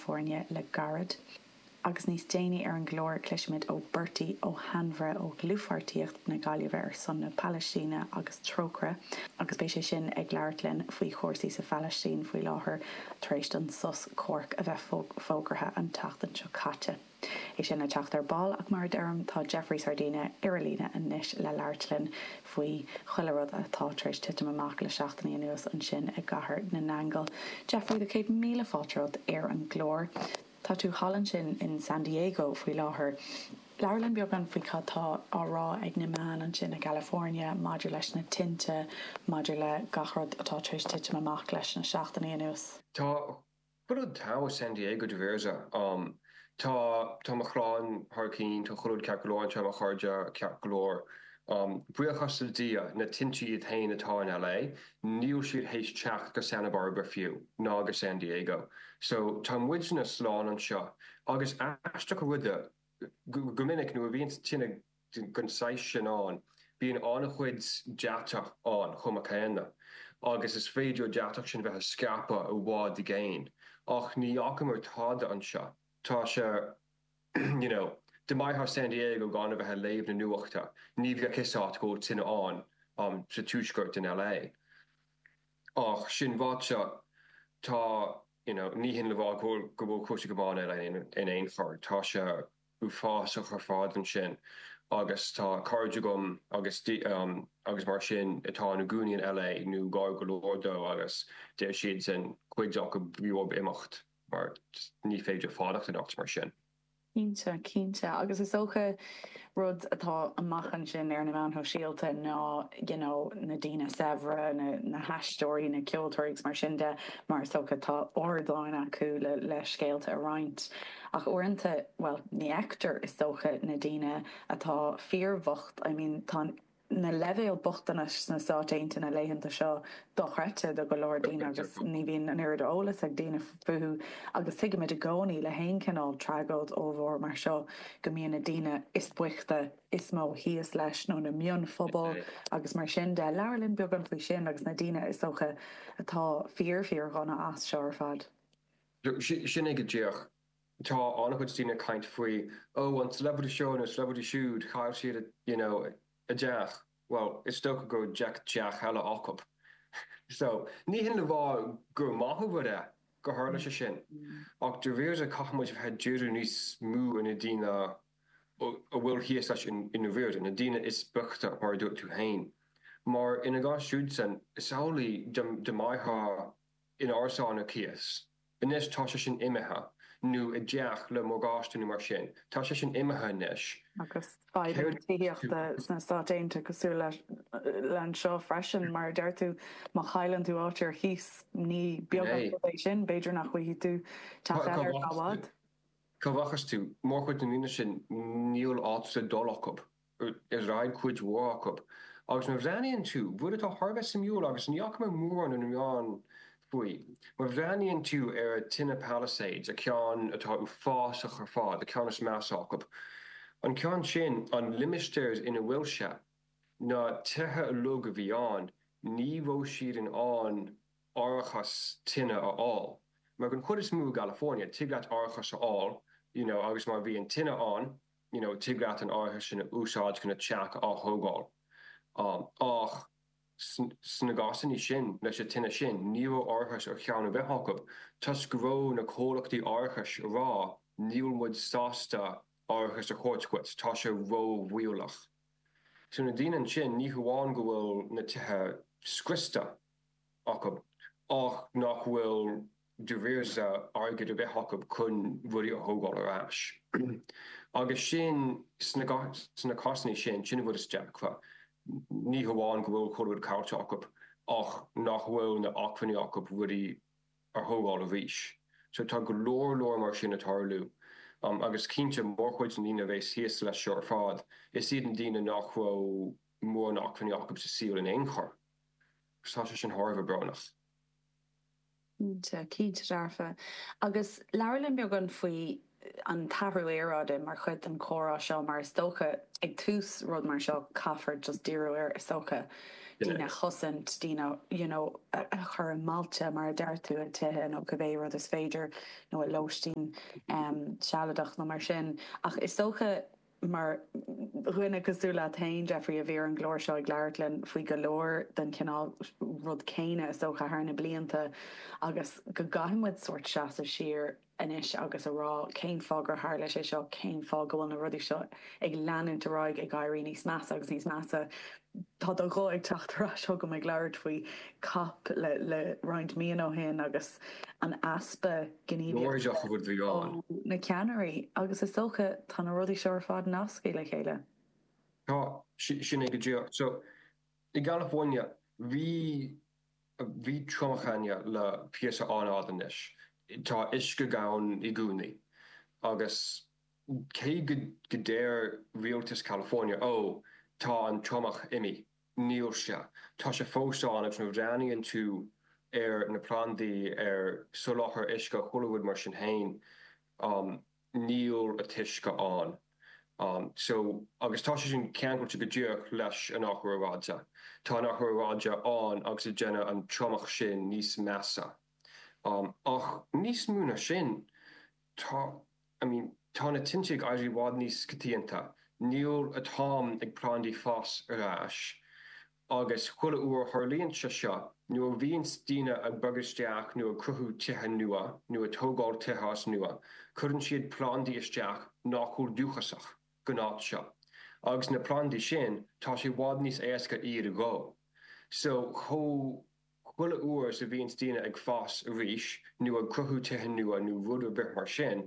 foirne le gairid agus níos déanaí ar an gclár cloisfimid ó Bertie Ó hAinmhire ó dhlúthpháirtíocht na Gaillimhe ar son na Palaistíne agus Trócaire agus beidh sé sin ag labhairt linn faoi chúrsaí sa Phalaistín faoi láthair tar éis don sos comhraic a bheith fógartha an tseachtain seo caite. É sin le teacht ar ball ach mar a deirim tá Jeffrey Sardina ar an líne anois le labhairt linn faoi chuile rud atá tar éis titim amach le seachtainí anuas ansin i gCathair na nAingeal. Jeffrey tá céad míle fáilte romhat ar an gclár. Tá tú thall ansin in San Diego faoi láthair. Labhair linn beagán faoi cad tá á rá ag na meáin ansin i gCalifornia maidir leis na tinte maidir le gach rud atá tar éis titim amach leis na seachtainí anuas. Tá Chuile rud thíos i San Diego dáiríre um. Tá, tá mo chlann thar cionn, tá chuile rud ceart go leor anseo, tá mo chairde, ceart go leor. Buíochas le Dia, na tinte iad féin atá in LA, níl siad théis teacht go Santa Barbara fiú, ná go San Diego. So, tá muidne slán anseo. Agus is aisteach an rud é, go minic nuair a bhíonns tine den saghas sin ann. Bíonn an-chuid deatach ann chomh maith céanna, agus is féidir an deatach sin bheith ag scaipeadh i bhfad i gcéin. Ach ní fhacamar tada anseo. Tá sé, you know, dá mbeifeá ar San Diego gan a bheith ag léamh na nuachta. Ní bheadh 'fhios a't go bhfuil tine ann sa tuaisceart in LA. Ach sin ráite, tá, you know, ní hin le rá go bhfuil cúrsaí go maith in LA in aon chor. Tá sé. uafásach ar fad ansin agus tá cairde agam agus agus mar sin atá ina gcónaí in LA nó gar go leor dó agus deir siadsan cuid acu b'éigean dóibh imeacht mar ní féidir fanacht in áit mar sin. Cinnte, cinnte agus is dócha rud atá amach ansin ar na meáin shóisialta ná you know na daoine saibhre, na haisteoirí, na ceoltóirí agus mar sin de mar is dócha tá ardáin acu le scéalta a roinnt. Ach uaireanta, bhuel, ní fheictear, is dócha, na daoine atá fíorbhocht, I mean, tá na leibhéil bochtanais sna Stáit Aontaithe na laethanta seo dochreidte do go leor daoine agus ní bhíonn an oiread eolas ag daoine fúthu agus tuigimid i gcónaí le haon chineál tragóid ollmhór mar seo go mbíonn na daoine is boichte is mó thíos leis nó na mionphobail agus mar sin de. Labhair linn beagán faoi sin agus na daoine is dócha atá fíor, fíor-dhona as seo ar fad. Sin é go díreach. Tá an-chuid daoine ag caint faoi ó an celebrity seo nó celebrity siúd, chaill siad a, you know, a dteach. Bhuel, is dócha go bhfuil teach eile acu. So, ní hin le rá gur maith an rud é gur tharla sé sin. Ach dáiríre caithfimid a bheith ag díriú níos mó ar na daoine a bhfuil thíos leis i ndáiríre, na daoine is boichte mar a dúirt tú féin. Mar ina gcás siúd san, is amhlaidh dá mbeadh in árasán ar cíos. Anois tá sé sin imithe, nó i dteach le morgáiste nó mar sin. Tá sé sin imithe anois. Agus fadhb leis an tithíocht sna Stáit Aontaithe cosúil le anseo freisin, mar a deir tú, má chailleann tú áit ar chíos, ní beag an rud é sin, b'fhéidir nach bhfaighidh tú teach eile ar feadh i bhfad. So mothaíonn tú? Mórchuid na ndaoine sin níl áit le dul acu. ag cuid mhór acu. Agus nuair a bhreathnaíonn tú, rud atá thar a bheith suimiúil agus ní fhaca mé mórán ar na meáin faoi, má bhreathnaíonn tú ar a tine Palisades, a ceann atá uafásach ar fad, a ceann is measa acu, an ceann sin, an limistéar ina bhfuil sé, na tithe uilig a bhí ann, ní raibh siad in ann árachas tine a fháil. Mar den chuid is mó i gCalifornia, tig leat árachas a fháil, you know, agus má bhíonn tine ann, you know tig leat an t-árachas sin a úsáid chun a teach a atógáil. Ach sna cásannaí sin, leis a tine sin, ní raibh árachas ar cheann ar bith acu, toisc go raibh na comhlachtaí árachais a rá níl muid sásta árachas a thabhairt dhuit, tá sé ró-bhaolach. So na daoine ansin, ní hamháin go bhfuil na tithe scriosta acu, ach nach bhfuil. dóthain airgid a bheith acu chun rudaí a thógáil ar ais. Agus sin, sna cásannaí sin, sin an rud is deacra. Ní hamháin go bhfuil chuile rud caillte acu ach nach bhfuil na h-acmhainní acu rudaí a thógáil arís. So tá go leor leor mar sin ag tarlú. Agus cinnte, mórchuid na ndaoine a bhéas thíos leis seo ar fad, is iad na daoine nach raibh mórán acmhainní acu sa saol in aon chor. So tá sé sin thar a bheith brónach. Cinnte, cinnte dearfa. Agus labhair linn beagán faoi an t-athrú aeráide mar chuid den comhrá seo mar is dócha ag tús rud mar seo caithfear just díriú air is dócha, daoine a chosaint, daoine you know a chur i mbailte mar a deir tú, i dtithe nó cibé rud is féidir nó i lóistín sealadach nó mar sin ach is dócha, Mar dhuine cosúil leat féin, Jeffrey, a bhí ar an gclár seo ag labhairt linn faoi go leor den chineál rud céanna is dócha thar na blianta agus go gcaithfidh muid sórt seasamh siar anois agus a rá cén fáth gur tharla sé seo, cén fáth go bhfuil na rudaí seo ag leanúint ar aghaidh ag éirí níos measa agus níos measa. Tá do ghuth ag teacht ar ais chugam ag labhairt faoi cop roinnt míonna ó shin agus an easpa, gníomhaíochta ag na ceannairí agus is dócha tá na rudaí seo ar fad nasctha le chéile. Tá, sin é go díreach. So, i gCalifoirnea, bhí, bhí triomach cheana le píosa an-fhada anois. Tá uisce gann i gcónaí agus cé go, go deir rialtas Chalifoirnea, oh, tá an triomach imithe. Nílse. Tá sé fós ann agus nuair a bhreathnaíonn tú ar na plandaí, ar soláthar uisce, chuile rud mar sin fhéin, níl an t-uisce ann. So, agus tá sé sin ceangailte go díreach leis an Athrú Aeráide. Tá an Athrú Aeráide ann agus ag déanamh an triomach sin níos measa. Ach níos mó ná sin, tá. I mean, tá na tinte ag éirí i bhfad níos coitianta. Nuair atá na plandaí ag fás ar ais, agus chuile uair a tharlaíonn sé seo, nuair a bhíonns daoine ag bogadh isteach nó ag cruthú tithe nua nó ag tógáil tithe as nua, cuireann siad plandaí isteach nach bhfuil dúchasach gon áit seo. Agus na plandaí sin, tá sé i bhfad níos éasca iad a dhó. So, chomh. Chuile uair a bhíonns daoine ag fás arís nó ag cruthú tithe nua nó rud ar bith mar sin,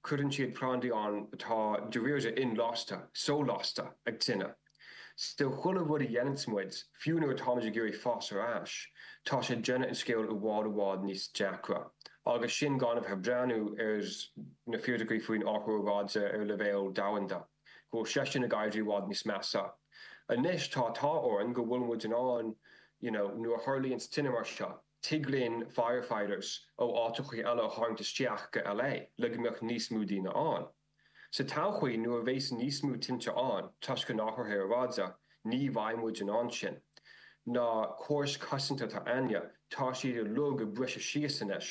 cuireann siad plandaí ann atá dáiríre inlasta, so-lasta, ag tine. So chuile rud a dhéananns muid, fiú nuair atáimid ag iarraidh fás ar ais, tá sé ag déanamh an scéal i bhfad i bhfad níos deacra. Agus sin gan a bheith ag breathnú ar na fíricí faoin athrú aeráide ar leibhéal domhanda. go bhfuil sé sin ag éirí i bhfad níos measa anois. Tá an t-ádh orainn go bhfuilimid in ann you know nuair a tharlaíonns tine mar seo, tig linn firefighters ó áiteachaí eile a tharraingt isteach go LA le go mbeadh níos mó daoine ann. Sa todhchaí nuair a bhéas níos mó tinte ann toisc an athraithe aeráide, ní bheidh muid in ann sin. Na córais cosanta atá againne, tá siad uilig ag briseadh síos anois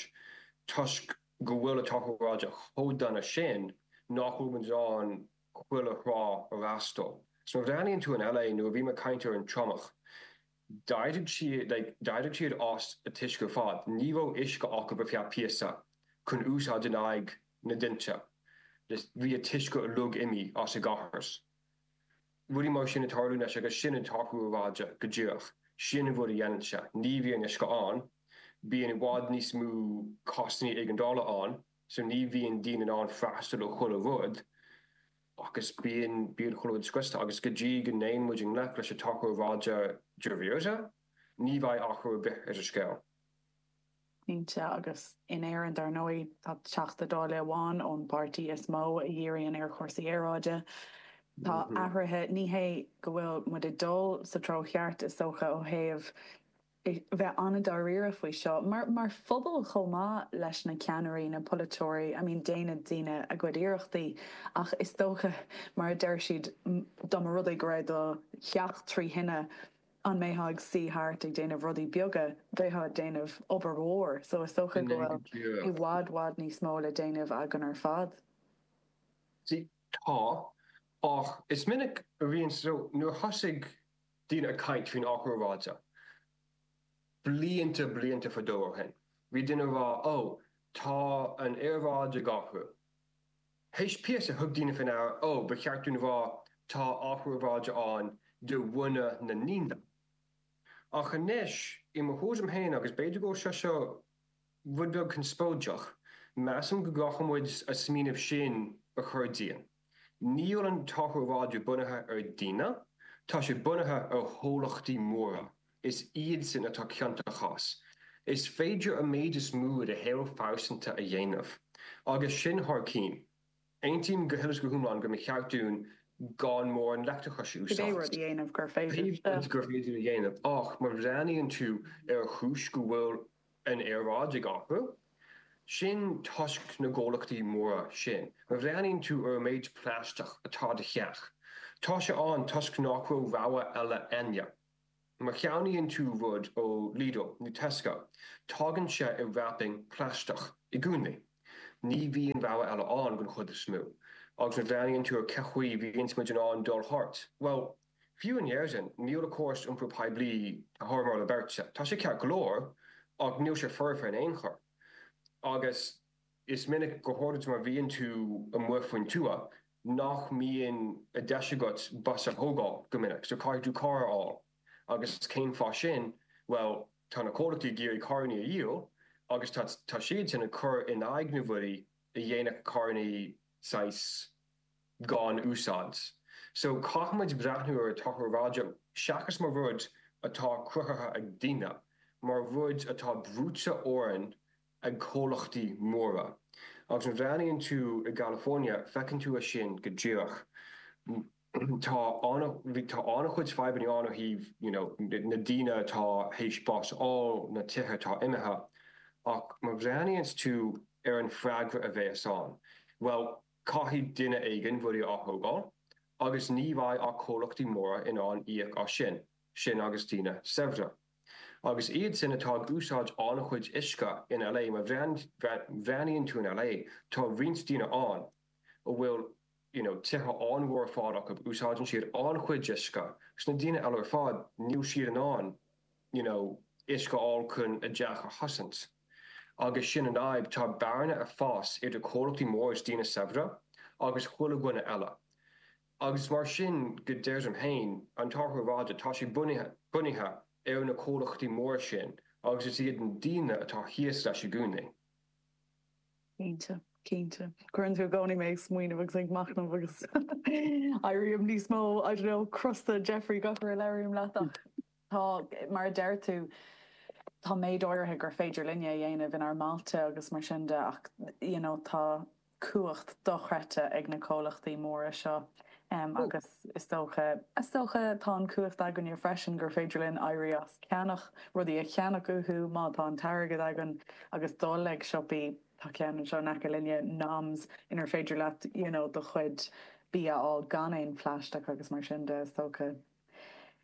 toisc, go bhfuil an t-athrú aeráide chomh dona sin nach bhfuil muid in ann chuile thráth a fhreastal. So má bhreathnaíonn tú in LA nuair a bhí mé ag caint ar an triomach, d'éirigh siad, like, d'éirigh siad as an uisce ar fad. Ní raibh uisce acub ar feadh píosa chun úsáid in aghaidh na dtinte. Just bhí an t-uisce uilig imithe as an gcathair. Rudaí mar sin ag tarlú anois agus sin an t-athrú aeráide go díreach. Sin an rud a dhéanann sé. Ní bhíonn uisce ann. Bíonn i bhfad níos mó cásannaí éigeandála ann so ní bhíonn daoine in ann freastal ar chuile rud agus bíonn, bíonn chuile rud scriosta agus go dtí go dtéann muid i ngleic leis an athrú aeráide, dáiríre,, ní bheidh athrú ar bith sa scéal. cinnte, agus in Éirinn dar ndóigh tá Teachta Dála amháin ón bpáirtí is mó a dhíríonn ar chúrsaí aeráide. Tá athruithe, ní hé go bhfuil muid ag dul sa treo cheart is dócha ó thaobh bheith an-dáiríre faoi seo, mar phobal chomh maith leis na ceannairí, na polaiteoirí, I mean déanann daoine a gcuid iarrachtaí ach is dócha mar a deir siad dá mba rud é go raibh do theach trí thine, an mbeifeá ag suí thart ag déanamh rudaí beaga, bheifeá ag déanamh obair mhór, so is dócha go bhfuil i bhfad bhfad níos mó le déanamh againn ar fad. Sea, tá, ach is minic a bhíonn, so nuair a thosaigh daoine ag caint faoin athrú aeráide, blianta blianta fadó ó shin, bhí daoine ag rá, oh, tá an aeráid ag athrú. Théis píosa thug daoine faoin aire ó ba cheart dom a rá tá athrú aeráide ann de bhunadh na ndaoine. Ach anois, i mo thuairim féin agus b'fhéidir go bhfuil sé seo rud beag conspóideach, measaim go gcaithfidh muid an smaoineamh sin a chur dínn. Níl an t-athrú aeráide bunaithe ar daoine, tá sé bunaithe ar chomhlachtaí móra. Is iad sin atá ciontach as. Is féidir an méid is mó de shaol phearsanta a dhéanamh. Agus sin thar cinn. Aontaím go huile is go hiomlán go mba cheart dúinn gan mórán leictreachais a úsáid. Pé rud gur féidir a dhéanamh. Ach má bhreathnaíonn tú ar chúis go bhfuil an aeráid ag athrú, sin toisc na gcomhlachtaí móra sin. Má bhreathnaíonn tú ar an méid plaisteach atá i do theach, tá sé ann toisc nach raibh rogha eile ann. Má cheannaíonn tú rud ó Lidl nó Tesco, tagann sé i wrapping plaisteach i gcónaí. Ní bhíonn rogha eile ann den chuid is mó. Agus má bhreathnaíonn tú ar cén chaoi bhíonns muid in ann dul thart, bhuel, fiú in Éirinn, níl an córas iompar poiblí thar mholadh beirte, tá sé ceart go leor, ach níl sé foirfe in aon chor. Agus. Is minic go háirid má bhíonn tú amuigh faoin tuath nach mbíonn deis agat bus a thógáil go minic so caithfidh tú carr a fháil. Agus cén fáth sin? Bhuel, tá na comhlachtaí ag iarraidh carrannaí a dhíol agus tá tá siadsan ag cur in aghaidh na n-athruithe a dhéanfadh carrannaí saghas gan úsáid. So caithfimid breathnú ar an t-athrú aeráide seachas mar rud atá cruthaithe ag daoine, mar rud atá brúite orainn ag comhlachtaí móra. Agus má bhreathnaíonn tú i gCalifoirnea feiceann tú é sin go díreach. Tá tá an-chuid fadhbanna ann ó thaobh you know na daoine atá théis bás a fháil, na tithe atá imithe. Ach má bhreathnaíonn tú ar an freagra a bhéas ann bhuel caithfidh duine éigin rudaí a atógáil agus ní bheidh ach comhlachtaí móra in ann íoc as sin, sin agus daoine saibhre. Agus iad sin atá ag úsáid an-chuid uisce in LA, má bhreathnaíonn tú in LA, tá roinnt daoine ann a bhfuil you know tithe an-mhór ar fad acu, úsáideann siad an-chuid uisce. Agus na daoine eile ar fad, níl siad in ann you know uisce a fháil chun a dteach a chosaint. Agus sin an fhadhb, tá bearna ag fás idir comhlachtaí móra is daoine saibhre agus chuile dhuine eile. Agus mar sin go dtí ar féin, an t-athrú aeráide, tá sé bunaithe ar na comhlachtaí móra sin agus is iad na daoine atá thíos leis i gcónaí. Cinnte, cinnte. Cuireann tú i gcónaí mé ag smaoineamh agus ag machnamh agus éirím níos mó, I don't know, crosta, Jeffrey, gach uair a labhraím leat ach. Tá, mar a deir tú, tá méid áirithe gur féidir linne a dhéanamh inár mbailte agus mar sin de ach you know tá cumhacht dochreidte ag na comhlachtaí móra seo agus is dócha, is dócha tá an chumhacht againne freisin gur féidir linn éirí as ceannach rudaí a cheannach uathu má tá an t-airgead againn agus dul ag siopaí, tá ceann anseo in aice linne, Noms, inar féidir leat you know do chuid bia a fháil gan aon phlaisteach agus mar sin de is dócha.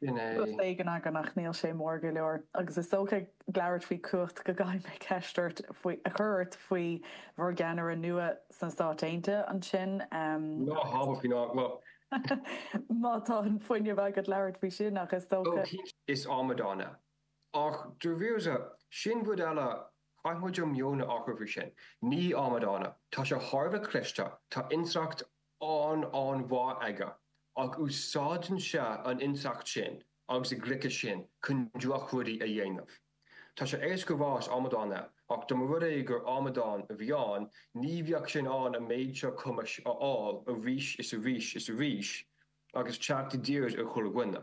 Rud éigin againn ach níl sé mór go leor. Agus is dócha ag labhairt faoi cumhacht go gcaithfidh mé ceist ort faoi, a chur ort faoi bhur gceannaire nua sna Stáit Aontaithe ansin. Ehm. Ná habair faoin eagla. Má tá an fuinneamh agat labhairt faoi sin ach is dócha. Ó cinnte is amadán é. Ach daoibhse, sin rud eile, caithfidh muid an meon a athrú faoi sin. Ní amadán é. Tá sé thar a bheith cliste, tá intleacht an-an-mhaith aige, ach úsáideann sé an intleacht sin agus an gliceas sin chun droch-rudaí a dhéanamh. Tá sé éasca a rá is amadán é, ach dá mba rud é gur amadán a bhí ann, ní bheadh sé in ann an méid seo cumhachta a fháil arís is arís is arís agus teacht i dtír ar chuile dhuine.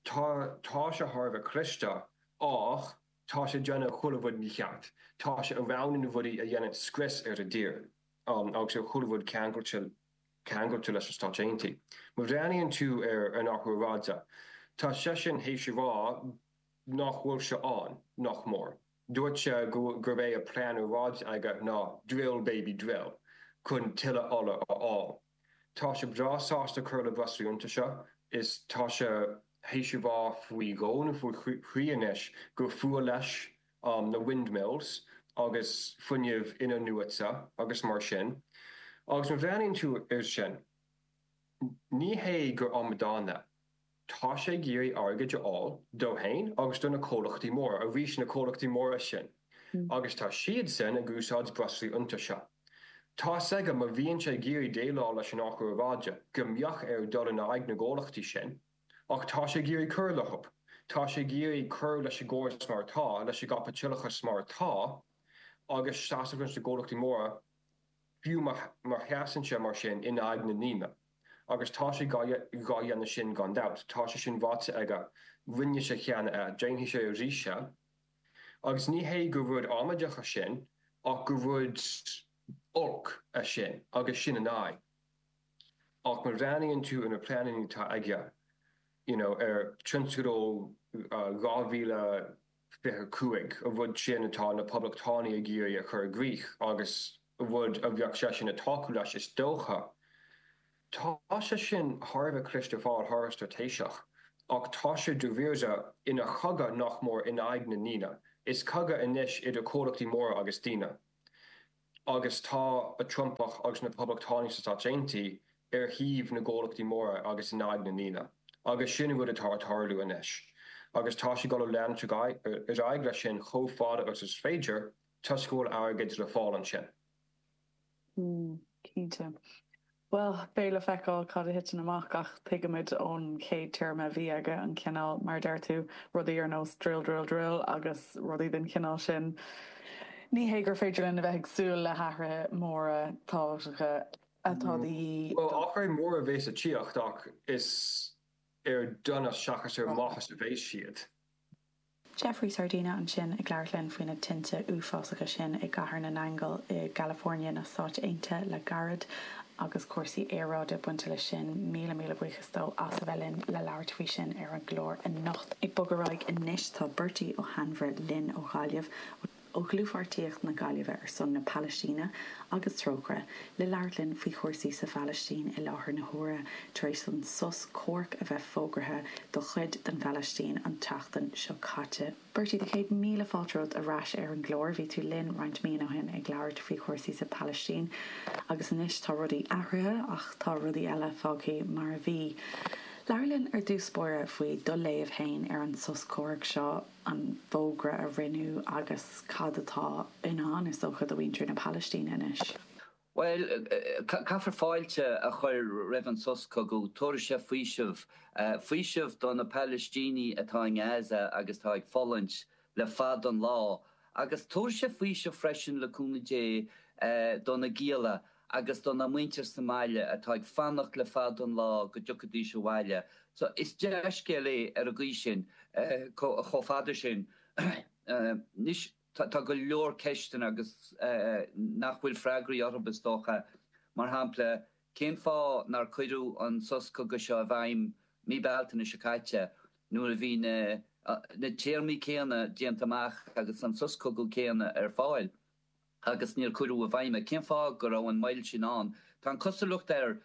Tá, tá sé thar a bheith cliste, ach tá sé ag déanamh chuile rud mícheart. Tá sé ag roghnú na rudaí a dhéanann scrios ar an tír s'a 'ainn agus ar chuile rud ceangailte ceangailte leis na Stáit Aontaí. Má bhreathnaíonn tú ar an athrú aeráide, tá seisean théis a rá nách bhfuil sé ann, nach mór. Dúirt sé go gurb é an plean aeráide aige ná drill baby drill chun tuilleadh ola a fháil. Tá sé breá sásta cur le breoslaí iontaise is tá sé théis a rá faoi dhó nó faoi thrí anois gur fuath leis na windmills agus fuinneamh in-athnuaite agus mar sin. Agus má bhreathnaíonn tú air sin, ní hé gur amadán é. Tá sé ag iarraidh airgid a fháil dó fhéin agus do na comhlachtaí móra, arís na comhlachtaí móra sin, agus tá siadsan ag úsáid breoslaí iontaise. Tá's aige má bhíonn sé ag iarraidh déileáil leis an Athrú Aeráide go mbeadh air dul in aghaidh na gcomhlachtaí sin ach tá sé ag iarraidh cur leo. Tá sé ag iarraidh cur leis an gcóras mar atá, leis an gcaipitileachas mar atá agus seasamh leis na gcomhlachtaí móra fiú má sheasann sé mar sin in aghaidh na ndaoine. Agus tá sé dhá dhéanamh sin gan dabht. Tá sé sin ráite aige. Rinne sé cheana é. Déanfaidh sé arís é. Agus ní hé gur rud amaideach é sin ach gur rud olc é sin agus sin an fhadhb. Ach má bhreathnaíonn tú ar na pleananna atá aige, you know, ar tionscadal 2000, 25. an rud sin atá na Poblachtánaigh ag iarraidh a chur i gcrích, agus rud a bheadh seisean ag tácú leis is dócha. Tá sé sin thar a bheith cliste, thar a bheith straitéiseach, ach tá sé dáiríre ina chogadh nach mór in aghaidh na ndaoine. Is cogadh anois idir comhlachtaí móra agus daoine. agus tá an Trumpach agus na Poblachtánaigh sna Stáit Aontaithe ar thaobh na gcomhlachtaí móra agus in aghaidh na ndaoine, agus sin an rud atá ag tarlú anois, agus tá siad ag dul a leanúint ar aghaidh leis sin chomh fada agus is féidir, toisc go bhfuil airgead le fáil ansin. Mm, cinnte. Bhuel, beidh le feiceáil cad a thiteann amach ach tuigimid ón chéad téarma a bhí aige an cineál, mar a deir tú, rudaí ar nós drill, drill, drill agus rudaí den chineál sin. Ní hé gur féidir linn a bheith ag súil le hathruithe móra tábhachtacha atá de dhíth do. Bhuel, athruithe móra a bheidh ag tíocht ach is ar donas seachas ar mhaitheas a bheidh siad. Jeffrey Sardina ansin ag labhairt linn faoi na tinte uafásacha sin i gCathair na nAingeal i gCalifornia na Stát Aontaithe le gairid agus cúrsaí aeráide bainte leis sin. Míle míle buíochas dó as a bheith linn le labhairt faoi sin ar an gclár anocht. Ag bogadh ar aghaidh anois tá Beairtí Ó hAinmhire linn ó Ghaillimh. ó Dhlúthpháirtíocht na Gaillimhe ar son na Palaistíne agus Trócaire le labhairt linn faoi chúrsaí sa Phalaistín i láthair na huaire tar éis don sos comhraic a bheith fógraithe do chuid den Phalaistín an tseachtain seo caite. Beairtí, do chéad míle fáilte romhat ar ais ar an gclár. Bhí tú linn roinnt míonna ó shin ag labhairt faoi chúrsaí sa Phalaistín agus anois tá rudaí athraithe ach tá rudaí eile fágthaí mar a bhí. Labhair linn ar dtús báire faoi do léamh fhéin ar an sos comhraic seo. an fógra a rinneadh agus cad atá i ndán is dócha do mhuintir na Palaistíne anois. Bhuel, caithfear fáilte a chur roimh an sos cogaidh, tabharfaidh sé faoiseamh, faoiseamh do na Palaistínigh atá i nGaza agus atá ag fulaingt le fada an lá agus tabharfaidh sé faoiseamh freisin, le cúnamh Dé, do na gialla agus dá muintir sa mbaile atá ag fanacht le fada an lá go dtiocfaidís abhaile so is dea-scéal é ar an gcaoi sin chomh fada sin. Anois tá go leor ceisteanna ann agus nach bhfuil freagraí orthu is dócha, mar shampla cén fáth nár cuireadh an sos cogaidh seo i bhfeidhm mí Bealtaine seo caite nuair a bhí na téarmaí céanna déanta amach agus an sos cogaidh céanna ar fáil. agus níor cuireadh i bhfeidhm é. Cén fáth go raibh an moill sin ann? Tá an cosúlacht air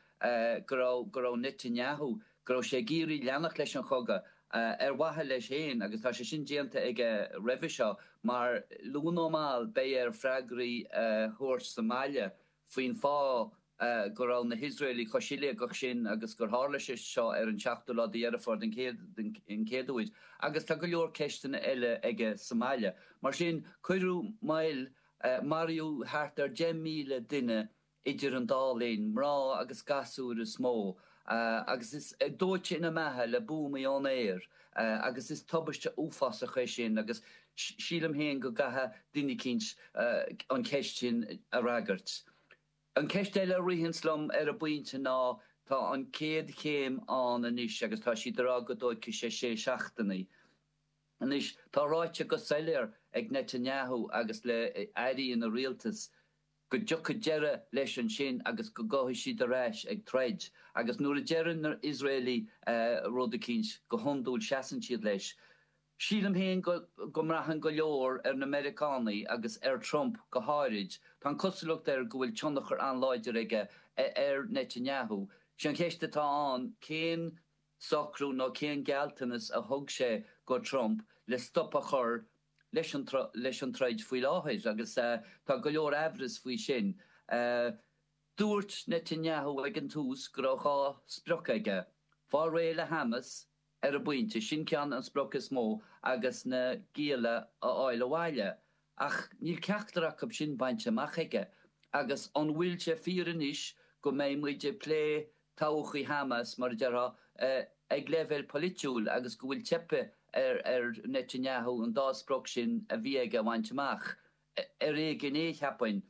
go raibh go raibh Netanyahu, go raibh sé ag iarraidh leanacht leis an chogadh ar mhaithe leis féin agus tá sé sin déanta aige roimhe seo mar luath nó mall beidh air freagraí a thabhairt sa mbaile faoin fáth go raibh na hIosraelaigh chomh siléigeach sin agus gur tharla sé seo ar an seachtú lá de Dheireadh Fómhair den chéad uair agus tá go leor ceisteanna eile aige sa mbaile. Mar sin, cuireadh moill, maraíodh thart ar 10,000 duine idir an dá linn, mná agus gasúir is mó, agus is dóite ina mbeatha le buamaí ón aer agus is tubaiste uafásach é sin agus sílim féin go gcaithfidh duine eicínt an cheist sin a fhreagairt. An cheist eile a ritheanns liom ar an bpointe ná tá an chéad chéim ann anois agus tá siad ag rá go dtóigfidh sé sé seachtainí. Anois tá ráite go soiléar ag Netanyahu agus le airí ina rialtas, go dtiocfaidh deireadh leis ansin agus go ngabhfaidh siad ar ais ag troid. Agus nuair a deireann na hIosraelaigh rud eicínt, go hiondúil seasann siad leis. Sílim féin go mbraitheann go leor ar na Meiriceánaí agus ar Trump go háirid. Tá an cosúlacht air go bhfuil tionchar an-láidir aige ar Netanyahu. Sé an cheist atá ann cén socrú nó cén gealltanas a thug sé go Trump le stop a chur le leis an troid faoi láthair agus tá go leor aimhreas faoi sin. Dúirt Netanyahu ag an tús go raibh dhá sprioc aige, fáil réidh le Hamas ar an bpointe, sin ceann, an sprioc is mó, agus na gialla a fháil abhaile. Ach níl ceachtar acu sin bainte amach aige. Agus an bhfuil sé fíor anois go mbeidh muid ag plé todhchaí Hamas, mar a déarfá, ag leibhéal poilitiúil agus go bhfuil teipthe ar Netanyahu an dá sprioc sin a bhí aige a bhaint amach, ar éigin é, cheapfainn.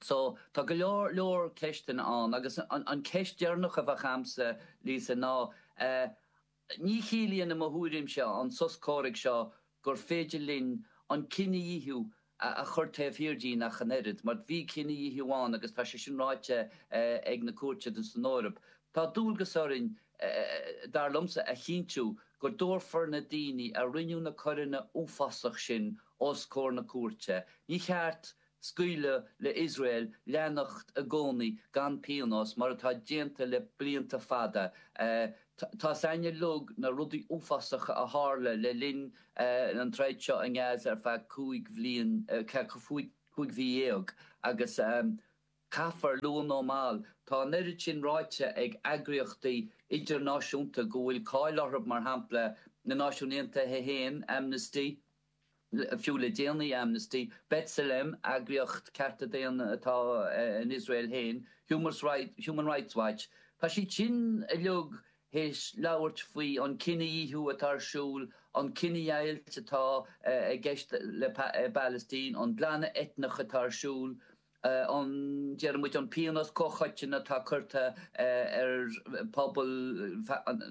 So, tá go leor leor ceisteanna ann agus an cheist deireanach a bheadh a'msa, Lisa, ná eh, Ní chiallaíonn, i mo thuairimse, an sos comhraic seo gur féidir linn an cinedhíothú a chur taobh thiar dínn ach an oiread, mar bhí cinedhíothú ann agus tá sé sin ráite ag na cúirteanna san Eoraip. Tá dualgas orainn, dar liomsa, a chinntiú go dtabharfar na daoine a rinne na coireanna uafásach sin os comhair na cúirte. Ní cheart Scaoileadh le Iosrael leanacht i gcónaí gan pionós mar atá déanta le blianta fada. Tá a fhios a'inn uilig na rudaí uafásacha a tharla le linn an troid seo i nGaza ar feadh cúig bhliain, cúig mhí dhéag agus caithfear, luath nó mall, tá an oiread sin ráite ag eagraíochtaí idirnáisiúnta go bhfuil cáil orthu, mar shampla na Náisiúin Aontaithe féin, Amnesty, Fiú le déanaí, Amnesty, B'Tselem, eagraíocht cearta daonna atá in Iosrael féin, Human Rights Watch, tá siad sin uilig théis labhairt faoi an cinedhíothú atá ar siúl, an chinedheighilt atá i gceist leis an bPalaistín, an glanadh eitneach atá ar siúl. A ndeir muid an pionós comhchoiteann atá curtha ar phobal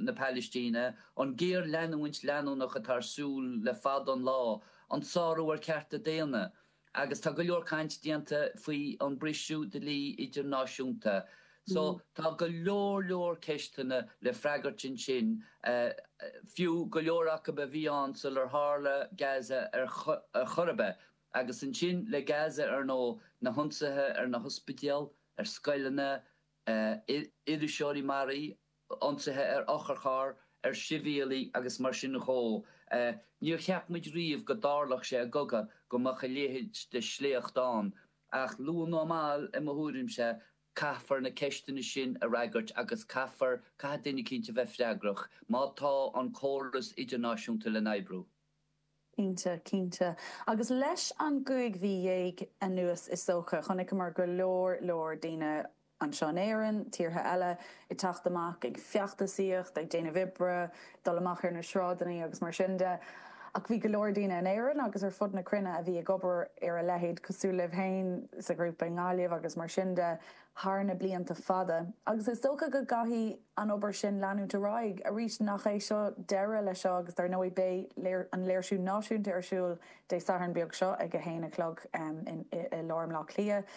na Pailistíne, an géarleanúint leanúnach atá ar siúl le fada an lá, an sárú ar chearta daonna, agus tá go leor caint déanta faoi an briseadh dlí idirnáisiúnta. So tá go leor leor ceisteanna le freagairt ansin, fiú go leor acu a bhí ann sular tharla Gaza ar chor ar bith. Agus ansin le Gaza ar ndóigh, na hionsaithe ar na hospidéil, ar scoileanna, iriseoirí maraithe, ionsaithe ar otharcharr, ar shibhialaigh agus mar sin dhó. Níor cheap muid riamh go dtarlódh sé i gcogadh go mbeadh a leithéid de shléacht ann. Ach luath nó mall, i mo thuairimse, caithfear na ceisteanna sin a fhreagairt agus caithfear, caithfidh duine eicínt a bheith freagrach má tá an córas idirnáisiúnta le n-oibriú. Cinnte, cinnte. Agus leis an gcúig mhí dhéag anuas is dócha, chonaiceamar go leor leor daoine, anseo in Éirinn, tíortha eile, ag teacht amach ag feachtasaíocht, ag déanamh oibre, ag dul amach ar na sráideannaí agus mar sin de. Ach bhí go leor daoine in Éirinn agus ar fud na cruinne a bhí ag obair ar a leithéid, cosúil libh féin sa ghrúpa i nGaillimh agus mar sin de, thar na blianta fada. Agus is dócha go gcaithfidh. an obair sin leanúint ar aghaidh. Arís, nach é seo deireadh le seo agus dar ndóigh beidh an léirsiú náisiúnta ar siúl Dé Sathairn beag seo ag a haon a chlog i lár mBleá Cliath.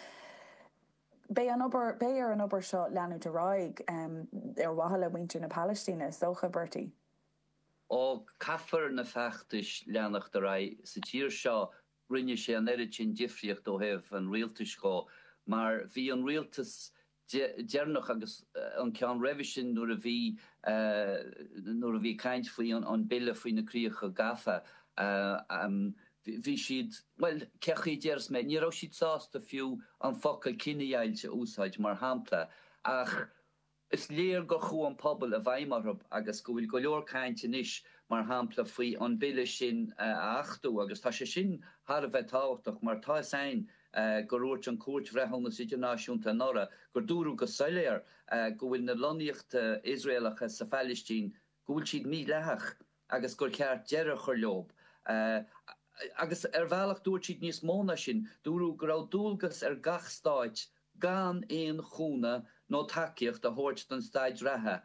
Beidh ar an obair seo leanúint ar aghaidh ar mhaithe le muintir na Palaistíne is dócha, Bertie. Ó, caithfear na feachtais leanacht ar aghaidh sa tír seo. Rinne sé an oiread sin difríocht ó thaobh an rialtais dhó mar bhí an rialtas deireanach agus an ceann roimhe sin nuair a bhí nuair a bhí caint faoi an Bille faoi na Críocha Gafa bhí siad bhuel cé chaoi a déarfas mé ní raibh siad sásta fiú an focal cinedheighilt a úsáid mar shampla ach is léir gur chuaigh an pobal i bhfeidhm orthu agus go bhfuil go leor caint anois mar shampla faoi an Bille sin a achtú agus tá sé sin thar a bheith tábhachtach mar tá is ain gur dhúirt an Cúirt Bhreithiúnas Idirnáisiúnta anuraidh gur dúradh go soiléir go bhfuil na lonnaíochta Iosraelacha sa Phailistín go bhfuil siad mídhleathach agus gur cheart deireadh a chur leob agus ar bhealach dúirt siad níos mó ná sin, dúradh go raibh dualgas ar gach stát gan aon chúnamh nó tacaíocht a thabhairt don staid reatha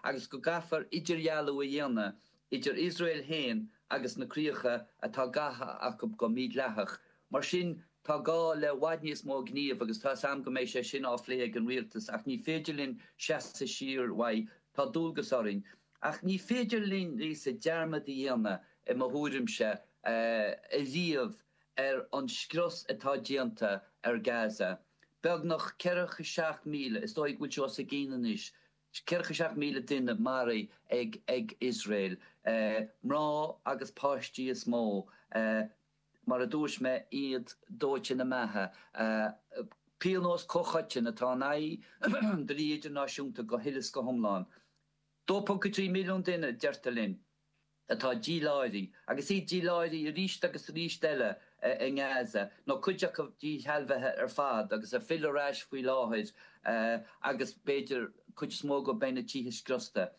agus go gcaithfear idirdhealú a dhéanamh idir Iosrael féin agus na críocha atá gafa acu go mídhleathach. Mar sin tá gá le i bhfad níos mó gníomh agus tá's a'm go mbeidh sé sin á phlé ag an Rialtas ach ní féidir linn seasamh siar uaidh. Tá dualgas orainn. Ach ní féidir linn, Lisa, dearmad a dhéanamh, i mo thuairimse, ariamh ar an scrios atá déanta ar Gaza. Beagnach ceathracha seacht míle, is dóigh go bhfuil sé os a chionn anois, ceathracha seacht míle duine a maraíodh ag Iosrael. Mná agus páistí is mó, mar a dúirt mé, iad dóite ina mbeatha. Pionós comhchoiteann atá in aghaidh an dlí idirnáisiúnta go huile is go hiomlán. 2.3 milliún duine, deirtear linn. atá díláithrithe, agus iad díláithrithe aríst agus aríst eile, i nGaza, nó cuid acu díshealbhaithe ar fad agus ag filleadh ar ais faoi láthair, agus b'fhéidir cuid is mó acu beidh na tithe scriosta.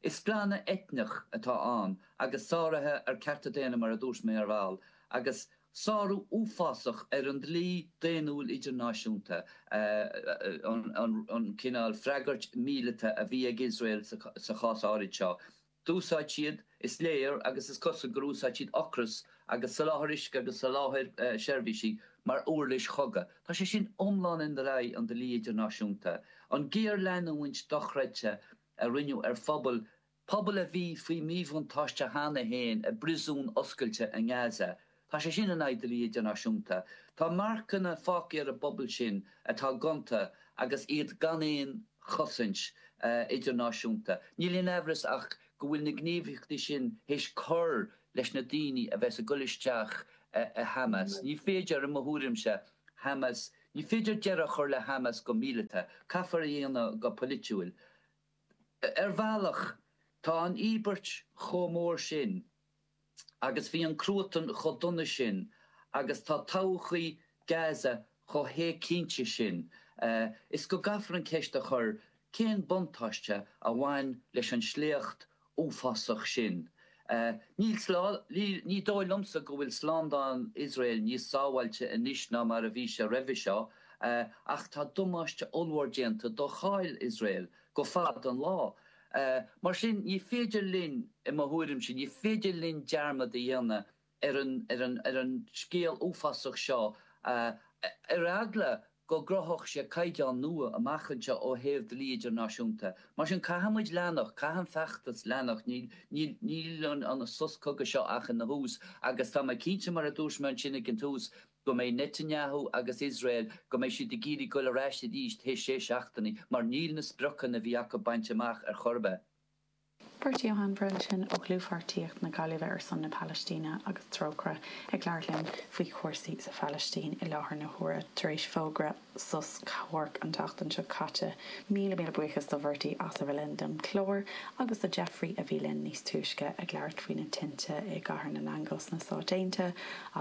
Is glanadh eitneach atá ann, agus sáruithe ar cearta daonna mar a dúirt mé ar ball, agus sárú uafásach ar an dlí daonnúil idirnáisiúnta, an cineál freagairt mhíleata a bhí ag Iosrael sa chás áirid seo. D'úsáid siad, is léir, agus is cosúil gur úsáid siad ocras agus soláthar uisce agus soláthar seirbhísí mar uirlis chogadh. Tá sé sin iomlán in aghaidh an dlí idirnáisiúnta. An géarleanúint dochreidte a rinneadh ar phobal, pobal a bhí faoi mhíbhuntáiste cheana féin i bpriosún oscailte i nGaza, Tá sé sin in aghaidh dlí idirnáisiúnta. Tá marcanna fágtha ar an bpobal sin atá gonta agus iad gan aon chosaint idirnáisiúnta. Níl aon amhras ach go bhfuil na gníomhaíochtaí sin théis cur leis na daoine a bheas ag goil isteach i Hamas. Ní féidir, i mo thuairimse, Hamas, ní féidir deireadh a chur le Hamas go míleata. Caithfear a dhéanamh go polaitiúil. Ar bhealach, tá an íobairt chomh mór sin. agus bhí an cruatan chomh dona sin agus tá todhchaí Gaza chomh héigcinnte sin is go gcaithfear an ceist a chur cén buntáiste a bhain leis an tsléacht uafásach sin. Ní dóigh liomsa go bhfuil slándáil Iosrael níos sábháilte anois ná mar a bhí sé roimhe seo ach tá damáiste ollmhór déanta do cháil Iosrael go fada an lá. Mar sin, ní féidir linn, i mo thuairimse, ní féidir linn dearmad a dhéanamh ar, ar an scéal uafásach seo ar eagla go gcruthódh sé caighdeán nua amach anseo ó thaobh dlí idirnáisiúnta. Mar sin, caithfimid leanacht, caithfidh an feachtas leanacht, níl an sos cogaidh seo ach ina thús agus tá mé cinnte, mar a dúirt mé ansin ag an tús, go mbeidh Netanyahu agus Israel, go mbeidh siad ag iarraidh goil ar ais arís théis sé seachtainí mar níl na spriocanna a bhí acu bainte amach ar chor ar bith. Bertie Ó hAinmhire ó Dhlúthpháirtíocht na Gaillimhe ar son na Palaistíne agus Trócaire ag labhairt linn faoi chúrsaí sa Phalaistín i láthair na huaire tar éis fógra sos comhraic an tseachtain seo caite. Míle míle buíochas do Bhertie as a bheith linn don chlár agus do Jeffrey a bhí linn níos túisce ag labhairt faoi na tinte i gCathair na nAingeal sna Stáit Aontaithe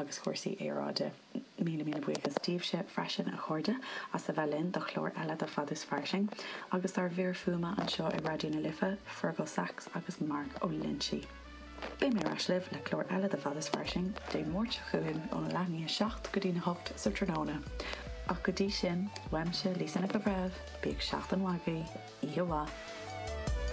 agus cúrsaí aeráide. Míle míle buíochas daoibhse freisin a chairde as a bheith linn do chlár eile de Fad is Fairsing agus dár bhfir fuaime anseo i Raidió na Life, Fergal Saxe agus Mark Ó Loinsigh. Beidh mé ar ais libh le clár eile de Fad is Fairsing Dé Máirt seo chugainn ó leath i ndiaidh a seacht go dtí a hocht sa tráthnóna. Ach go dtí sin, uaimse, Lisa Nic an Bhreithimh, bíodh seachtain mhaith agaibh, oíche mhaith!